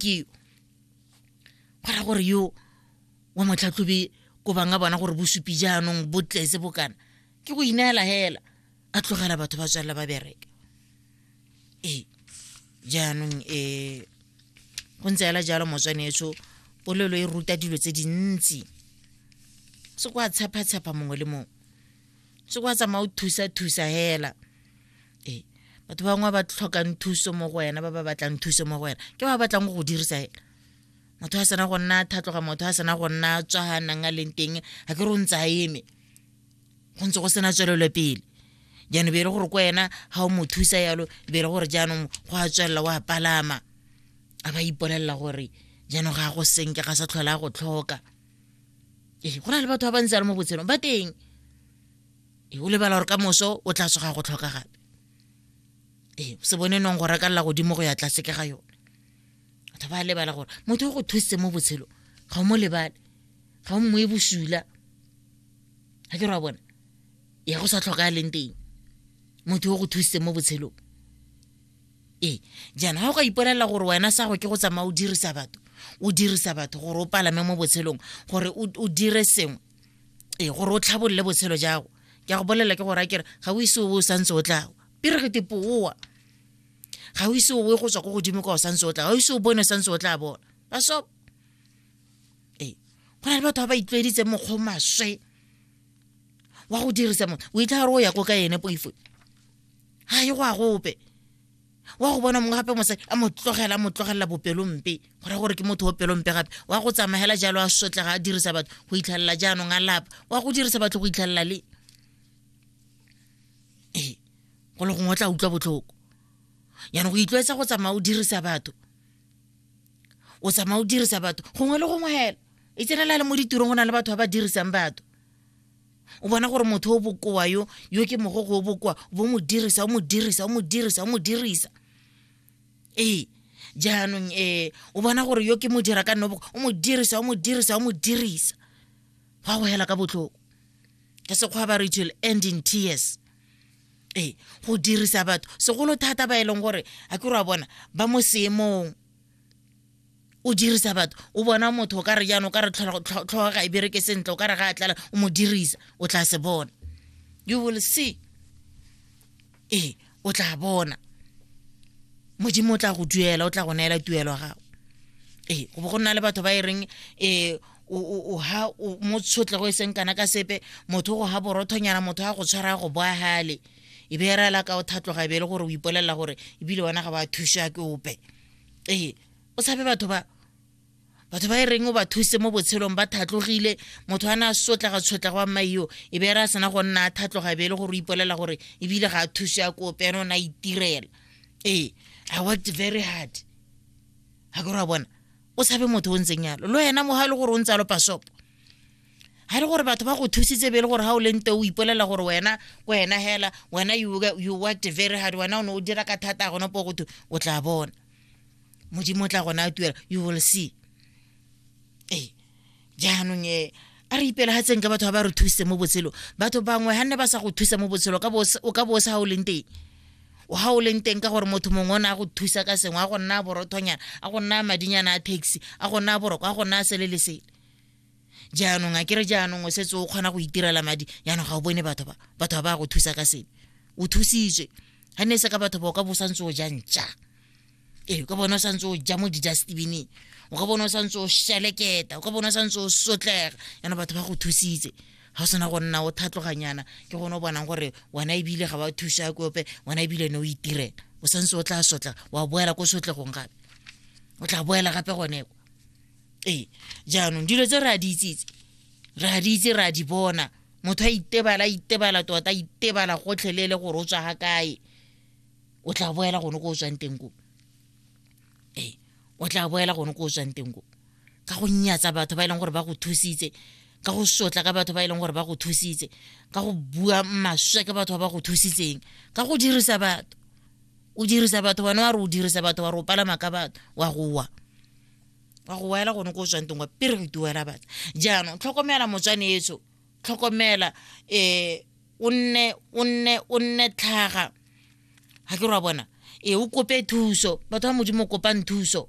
ke go ra gore yo wa motlhatlhobe ko banga bona gore bosupi jaanong bo tletse bokana ke go ineela hela a tlogela batho ba tswelela ba bereka ee jaanong um go ntse ela jalo motswanetso polelo e ruta dilo tse dintsi se kwa tshepa-tshepa mongwe le mongwe se kwa tsamaya o thusa-thusa hela ee batho bangwe ba ba tlhokang thuso mo go wena ba ba batlang thuso mo go wena ke ba ba batlang go go dirisa hela motho a sena go nna thatloga motho a sena go nna tswa ga nang a leng teng ga ke re o ntse a eme go ntse go sena tswelelo pele jaanong be e le gore ko wena ga o mo thusa yalo be e le gore jaanong go a tswelela wa palama a ba ipolelela gore jaanong ga go senke ga sa tlhola go tlhoka ee go na le batho ba bantsi a le mo botshelong ba teng ee o lebala gore ka moso o tla soga go tlhoka gape ee se bone nong go rakalela godimo go ya tlase ke ga yone batho ba lebala gore motho o go thusitse mo botshelo ga o mo lebale ga o mmoe bosula ga ke re wa bona ya go sa tlhoka a leng teng motho o go thusitse mo botshelong ee jaana ga o ka ipolelela gore wena sa go ke go tsamaya o dirisa batho o dirisa batho gore o palame mo botshelong gore o dire sengwe ee gore o tlhabolole botshelo jago ke a go bolelela ke gore a kere ga o ise o santse o tlawa pere re tepoa ga o ise o go tswa ko godimo ka o santse o tla ga o ise o bone santse o tla bona ba so ee go na le batho ba ba itlwaeditseng mokgwa o maswe wa go dirisa motho o itlha gore o ya ko ka ene poifo ga ye go a gope wa go bona mongwe gape mosadi a mo tlogela a mo tlogelela bopelompe go raya gore ke motho o pelompe gape wa go tsamagela jalo a sotlega a dirisa batho go itlhelela jaanong a lapa wa go dirisa batho go itlhelela le ee go le gongwe o tla utlwa botlhoko jaanong go itlwaetsa go tsamaya o dirisa batho o tsamaya o dirisa batho gongwe le gongwe hela e tsenela le mo ditirong go na le batho ba ba dirisang batho o bona gore motho o bokoa yo yo ke mogogo o bokoa bo mo dirisa o mo dirisa o mo dirisa o mo dirisa ee jaanong um o bona gore yo ke mo dira ka nne o mo dirisa o mo dirisa o mo dirisa go a go hela ka botlhoko ka sekgwa ba re it will end in tears ee go dirisa batho segolo thata ba e leng gore a ke re wa bona ba mo seemong o dirisa batho o bona motho o ka re jaanong o ka re tlhoga ga e bereke sentle o ka re ga a tlala o mo dirisa o tla se bona you will see ee o tla bona modimo o tla go duela o tla go neela tuelo gago ee go bo go nna le batho ba e reng um o ha o mo tshotlego e seng kana ka sepe motho go ha borothonyana motho a go tshwara go boagale e be erela ka o thatloga e be e le gore o ipolelela gore ebile wena ga ba thusa ke ope ee o tshabe batho ba batho ba e reng o ba thuse mo botshelong ba thatlogile motho a ne a sotlega tshotlego wa mmaio e be re a sena go nna a thatloga e be e le gore o ipolela gore ebile ga a thuse ya kope ene o ne a itirela ee i worked very hard ga ke re wa bona o tshabe motho o ntseng yalo lo ena mo ga e le gore o ntse alo pasopo ga e le gore batho ba go thusitse be e le gore ga o leng te o ipolela gore wena wena hela wena you worked very hard wena o ne o dira ka thata gona po gotho o tla bona modimo o tla gona a tuela you will see ee jaanong e a re ipelahatseng ka batho ba ba re thuse mo botshelo batho bangwe ga nne ba sa go thusa mo botshelo o ka bo o se ga o leng teng o ga o leng teng ka gore motho mongwe o ne a go thusa ka sengwe a go nna borothonyana a go nna madinyana a taxi a go nna boroko a go nna sele le sele jaanong a kere jaanong o setse o kgona go itirela madi jaanong ga o bone batho ba batho ba ba go thusa ka sebe o thusitswe ga ne e se ka batho ba o ka bosantse o jang ja ee o ka bona o santse o ja mo didastibining o ka bona o santse o sheleketa o ka bona o santse o sotlega yana batho ba go thusitse ga o sena go nna o thatloganyana ke gone o bonang gore wena ebile ga ba thusa kope wena ebile ne o itirela o santse o tla sotla wa boela ko sotlegong gape o tla boela gape gone ko ee jaanong dilo tse re a di itsitse re a di itse re a di bona motho a itebala a itebala tota a itebala gotlhelele gore o tswa ga kae o tla boela gone ko o tswang teng ko ee o tla boela gone ko o tswang teng ko ka go nyatsa batho ba e leng gore ba go thusitse ka go sotla ka batho ba e leng gore ba go thusitse ka go bua maswe ka batho ba ba go thusitseng ka go dirisa batho o dirisa batho wena wa re o dirisa batho wa re o palama ka batho wa go wa wa go wela gone ko o tswang teng wa pere go ituwela batho jaanong tlhokomela motswane etso tlhokomela um o nne o nne o nne tlhaga ga ke re wa bona e o kope thuso batho ba modimo kopang thuso